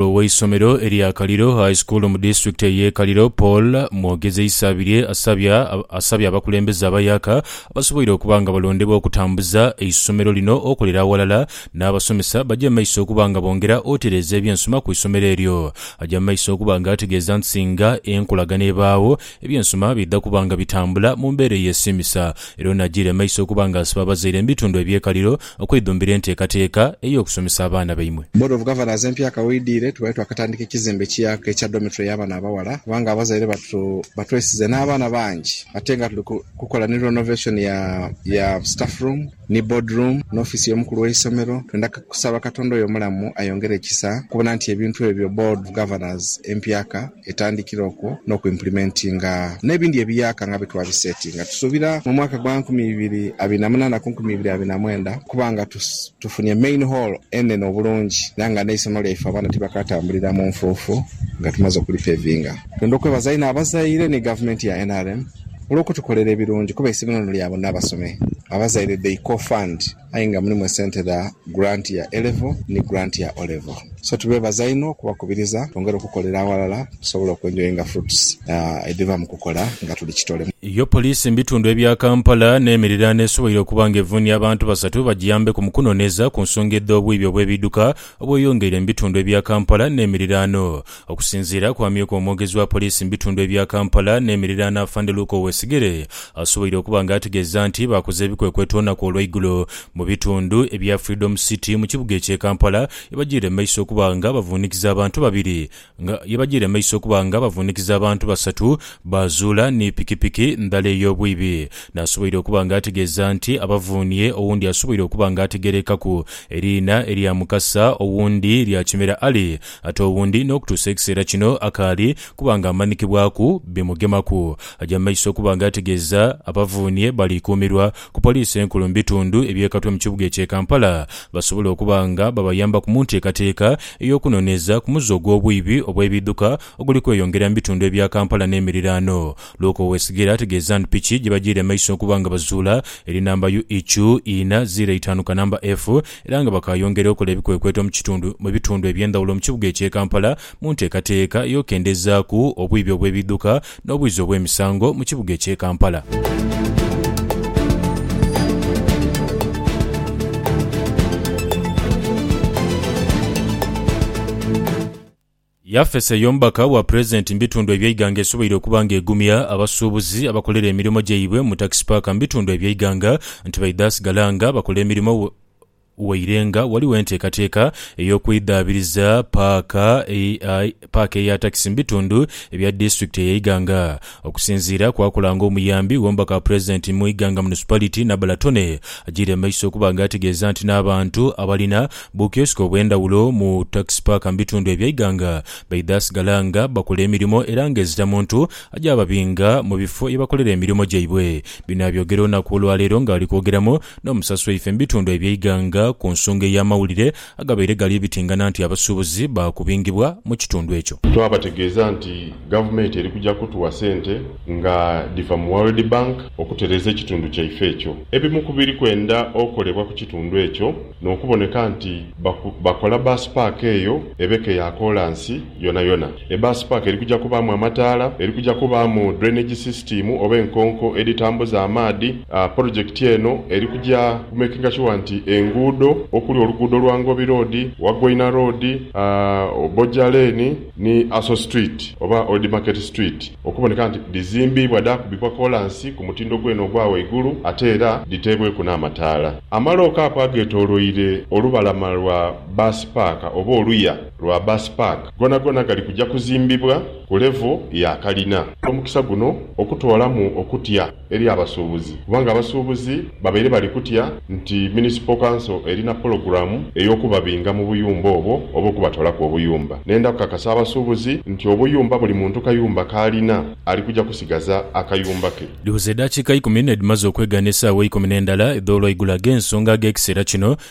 Omukulu w'eisomero erya Kaliro High School mu disitulikiti ey'e Kaliro, Paul Mwogezi Isabirye asabya asabye abakulembeze abayaka abasoboire okuba nga balondebwa okutambuza eisomero lino okolera aghalala n'abasomesa baja mu maiso okuba nga bongera otereeza ebyensoma ku isomero eryo. Aja mu maiso okuba nga ategeeza nti singa enkolagana ebaagho, ebyensoma bidha kuba nga bitambula mu mbeera eyesiimisa era ono ajiire maiso okuba nga asiba abazaire mu bitundu eby'e Kaliro okwidhumbira enteekateeka ey'okusomesa abaana baimwe. Board of Governors empya kaweidhiire tubadde twakatandika ekizimbe kiaku ekya dormitory y'abaana abaghala kubanga abazaire batu batwesize n'abaana bangi ate nga tuli kukola ni renovation ya ya staff room ni board room n'office y'omukulu w'eisomero. Twenda kusaba Katonda oyo omulamu ayongere ekisa okubona nti ebintu ebyo Board of Governors empya ka etandikira okwo n'okwimplementinga n'ebindi ebiyaaka nga bwetwabisetinga. Tusuubira mu mwaka gwa nkumi ibiri abiri na munaana ku nkumi ibiri abiri na mwenda okuba nga tufunye main hall enene obulungi era nga n'eisomo lyaife abaana tibakatambulira mu nfuufu nga tumaze okulipevinga. Twendha okwebaza inho abazaire ni gavumenti ya nrm olw'okutukolera ebirungi kuba eisomero lino lya bonna abasome. Abazaire they co-fund. Aye nga mulimu esente dha grant ya A-Level ni grant ya O-Level. So tubeebaza inho okubakubiriza twongere okukolera aghalala tusobole oku enjoyinga fruits edhiva mu kukola nga tuli kitole. Yo poliisi mu bitundu ebya Kampala n'emiriraano esoboire okuba nga evunia abantu basatu bagiyambeku mu kunoneeza ku nsonga edh'obwiibi obw'ebiidhuka obweyongeire mu bitundu ebya Kampala n'emiriraano. Okusinziira ku amyuka omwogezi wa poliisi mu bitundu ebya Kampala n'emiriraano Afande Luke Owesigire, asoboire okuba nga ategeeza nti baakoze ebikwekweto olunaku olw'eigulo mu bitundu ebya Freedom City mu kibuga ekye Kampala yebajiire mu maiso okuba nga bavuunikiza abantu babiri yebajiire mu maiso okuba nga bavuunikiza abantu basatu baazuula ni pikipiki ndhala ey'obwibi n'asoboire okuba nga ategeeza nti abavuunie owundi asoboire okuba nga ategerekaku eriina erya Mukasa owundi lya Kimera Ali Ate owundi n'okutuusa ekiseera kino akaali kuba nga amanikibwaku bimugemaku. Aja mu maiso okuba nga ategeeza abavuunhie bali kuumirwa ku poliisi enkulu mu bitundu ebyekatwe mu kibuga ekye Kampala basobole okuba nga babayambaku mu nteekateeka ey'okunoneeza ku muze ogw'obwiibi obw'ebiidhuka oguli kweyongera mu bitundu ebya Kampala n'emiriraano Luke Owesigere ategeeza nti piki gye bajiire maiso okuba nga bazuula eri namba UIQ ina ziro eitaanu kanamba F era nga bakaayongera okola ebikwekweto mu kitundu mu bitundu eby'endhawulo mu kibuga eky'e Kampala mu nteekateeka ey'okendezaaku obwibi obw'ebidhuka n'obwizi obw'emisango mu kibuga eky'e Kampala. Yafesi ey'omubaka wa Pulezidenti mu bitundu eby'eighanga esoboire okuba nga egumya abasuubuzi abakolera emirimo gyaibwe mu takisi paaka mu bitundu eby'eighanga nti baidha sigala nga bakola emirimo waire nga ghaligho enteekateeka ey'okwidhaabiriza paaka eya takisi mu bitundu ebya disitulikiti eye Iganga. Okusinziira ku akola nga omuyambi w'omubaka wa Pulezidenti mu Iganga Municipality, Nabula Tony, agyiire mu maiso okuba nga ategeeza nti n'abantu abalina bu kiosk obw'endhawulo mu Taxi Park mu bitundu ebya Iganga baidha sigala nga bakola emirimo era nga ezita muntu aja ababinga mu bifo ye bakolera emirimo gyaibwe. Bino abyogera olunaku olwaleero nga ali kwogeramu n'omusasi waife mu bitundu ebya Iganga ku nsonga ey'amawulire agabaire gali ebitingana nti abasuubuzi baakubingibwa mu kitundu ekyo. Twabategeeza nti Gavumenti eri kuja kutuwa sente nga dhiva mu World Bank okutereeza ekitundu kyaife ekyo. Ebimu ku biri kwenda okolebwa ku kitundu ekyo n'okuboneka nti bakola bus park eyo ebeke ya koolansi yonayona. E Bus Park eri kuja kubaamu amataala, eri kuja kubaamu drainage system oba enkonko edhitambuza amaadhi. Polojekiti eno eri kuja ku makinga shuwa nti enguudo okuli oluguudo lwa Ngobi Road, Wagoina Road, Oboja Lane ni Aso Street oba Old Market Street okuboneka nti dhizimbiibwa dhaakubibwa kolansi ku mutindo gwene ogwa waigulu ate era dhiteebweku n'amataala. Amalooka ago ageetooloire olubalama lwa Bus Park oba oluya. lwa Bus Park gonagona gali kuja kuzimbibwa ku levo ya kalina. Omukisa guno okutwalamu okutya eri abasuubuzi kubanga abasuubuzi babaire bali kutya nti Municipal Council erina pologulamu ey'okubabinga mu buyumba obwo oba okubatoolaku obuyumba. Nenda kukakasa abasuubuzi nti obuyumba buli muntu kayumba k'alina ali kuja kusigaza akayumba ke. Dhiweze edaakiika ikumi n'edhimaze okwegana esaawa eikumi n'endala edh'olwaigulo ag'ensonga ag'ekiseera kino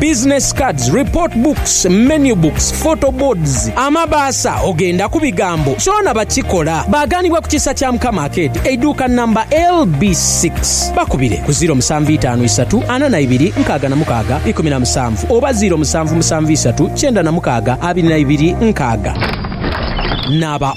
business cards, report books, menu books, photo boards, amabaasa ogenda ku bigambo kyona bakikola. Baaganibwa ku Kisa kya Mukama Akeedi, eiduuka nnamba LB six. Bakubire ku ziiro musanvu itaanu isatu ana na ibiri nkaaga na mukaaga ikumi na musanvu oba ziiro musanvu musanvu isatu kyenda na mukaaga abiri na ibiri nkaaga. Naaba.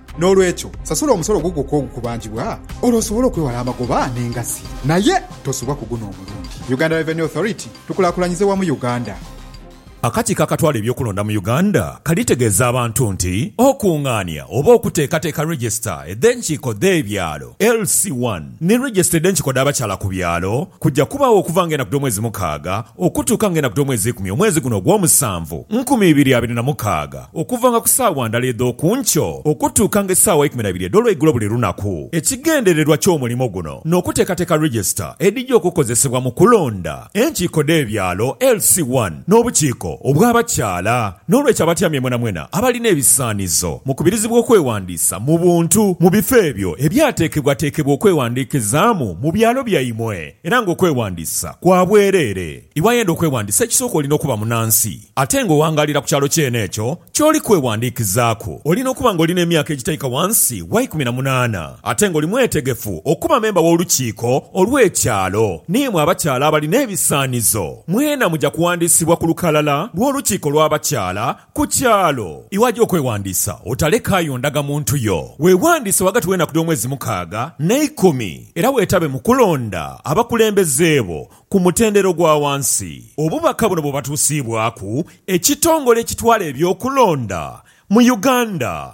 N'olwekyo, sasula omusolo ogwo gwokka ogukubanjibwa olwo osobole okwewala amagoba n'engassi naye tosubwa ku guno omulundi. Uganda Revenue Authority, Tukulaakulanyize wamu Uganda. Akakiiko akatwala eby'okulonda mu Uganda kalitegeeza abantu nti okungaania oba okuteekateeka Register edh'enkiiko dh'ebyalo, LC one, ni Register edh'enkiiko dh'abakyala ku byalo kujja kubaagho okuva nga enaku dh'omwezi mukaaga okutuuka nga enaku dh'omwezi ikumi omwezi guno ogw'omusanvu nkumi ibiri abiri na mukaaga. Okuvanga ku saawa ndala edh'oku nkyo okutuukanga esaawa eikumi na ibiri edh'olweigulo buli lunaku. Ekigendererwa ky'omulimo guno n'okuteekateeka register edhija okukozesebwa mu kulonda enkiiko dh'ebyalo, LC one, n'obukiiko obw'abakyala. N'olwekyo abatyamye mwenamwena abalina ebisaanizo mukubirizibwa okwewandiisa mu buntu mu bifo ebyo ebyateekebwateekebwa okwewandiikizaamu mu byalo byaimwe era ng'okwewandiisa kwa bwereere. Iwayenda okwewandiisa ekisooka olina okuba munansi. Ate ng'owangaalira ku kyalo kyene ekyo ky'oli kwewandiikizaaku, oli n'okuba ng'oli n'emyaka egitaika wansi wa ikumi na munaana, ate ng'oli mwetegefu okuba memba w'Olukiiko olw'Ekyalo. Naye mwe abakyala abali n'ebisaanizo, mwena muja kuwandiisibwa ku lukalala lw'Olukiiko lw'Abakyala ku kyalo. Iwaja okwewandiisa, otalekaayo ndagamuntu yo. Weewandiise ghagati w'enaku dh'omwezi mukaaga n'eikumi, era weetabe mu kulonda abakulembeze bo ku mutendera ogwa wansi. Obubaka buno bwebwatuusiibwaku ekitongole ekitwala eby'okulonda mu Uganda.